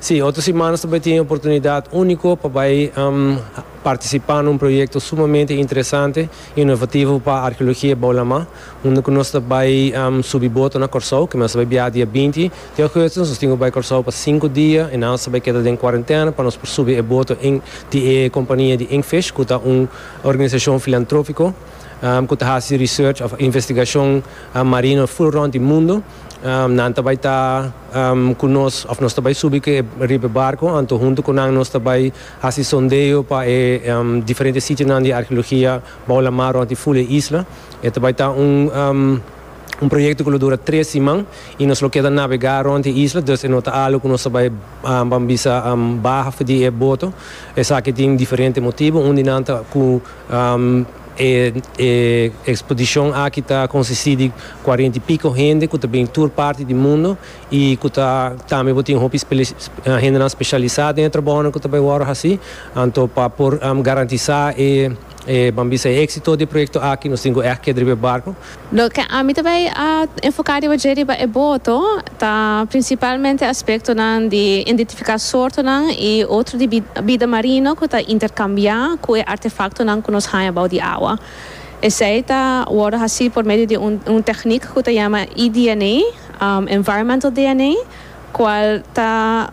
Sí, otro siman nos ta bai tin e oportunidad único pa bai participá na un proyecto sumamente interesante, inovativo pa arqueologia bou Lamá, unda cu nos ta bai subi boto na Corsou, que nos ta bai biaha dia binti di augustus, nos tin cu bai Corsou pa sinku dia, en aos ta bai keda den cuarentena pa nos por subi e boto en di e compania di Inkfish, cu ta un organisacion filantropico cu ta haci research of investigacion marino full rond di mundo. Nan ta bai ta ku nos òf nos ta bai subi riba e barko, anto huntu ku nan nos ta bai hasi sondeo pa e diferente sitionan di arkeologia bou lamar rònt di ful e isla. E ta bai ta un proyekto ku lo dura tres siman i nos lo keda nabegá rònt e isla, dus e no ta algu ku nos ta bai ban bisa baha di e boto. Esaki tin diferente motibu. Un di nan ta ku. E ekspodishon aki ta konsistí di kuarenta i piko hende ku ta bini tur parti di mundu i ku ta tambe bo tin hopi hendenan speshalisá den e trabounan ku ta bai wòrdu hasí. Anto pa por garantisá e, e, ban bisa, e éksito di e proyekto aki nos tin ku ègt keda riba e barku. Loke ami ta bay a enfoca riba dje riba e boto ta principalmente aspectonan di indentifica soortonan y otro di bida marino cu ta intercambia cu e artefactonan cu nos haña bao di awa. Esey ta wordo haci por medio di un techniek cu ta yama eDNA, Environmental DNA, cual ta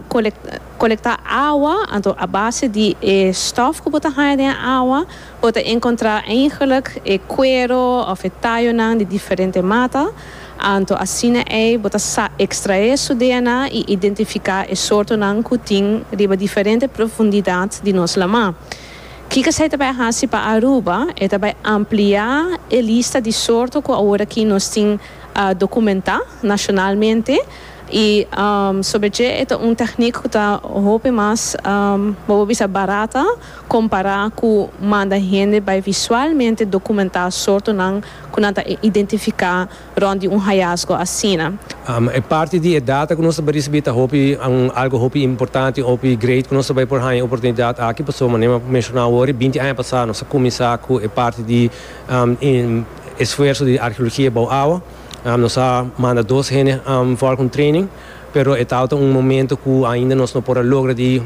colecta awa, anto a base di e stof cu bo ta haña den e awa, Bo ta encontra eigenlijk e cuero of e tayonan di diferente mata, anto asina ei bo ta sa extrae su DNA y identifica e soortonan cu tin riba diferente profundidad di nos lama. Kiko esei ta bay haci pa Aruba? E ta bay amplia e lista di soorto cu aworakin nos tin documenta nacionalmente y sobre dje e ta un techniek cu ta hopi mas, bo por bisa, barata. Compará cu manda hende bay visualmente documentá soortonan cu nan ta identificá rond di un hayasgo asina. E parti di e data cu nos ta bay ricibi ta hopi algo hopi importante, hopi great cu nos ta bay por haña e oportunidad aki. Pasobra manera mi a mencioná awor, binti aña pasá nos a cuminsá cu e parti di esfuerso di arheologia bou awa. Nos a manda dos hende for cu un training. Pero e tawata un momento cu ainda nos no por a logra di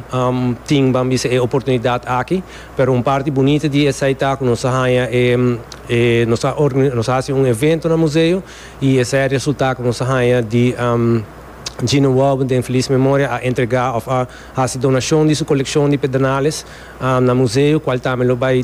tin ban bisa e oportunidad aki. Pero un parti bunita di esai ta cu nos a haña e e nos a nos a haci un evento na museo y esai a resulta cu nos a haña di Gino Wouben den Feliz Memoria a entrega of a haci donacion di su coleccion di pedernales na museo cual tambe lo bay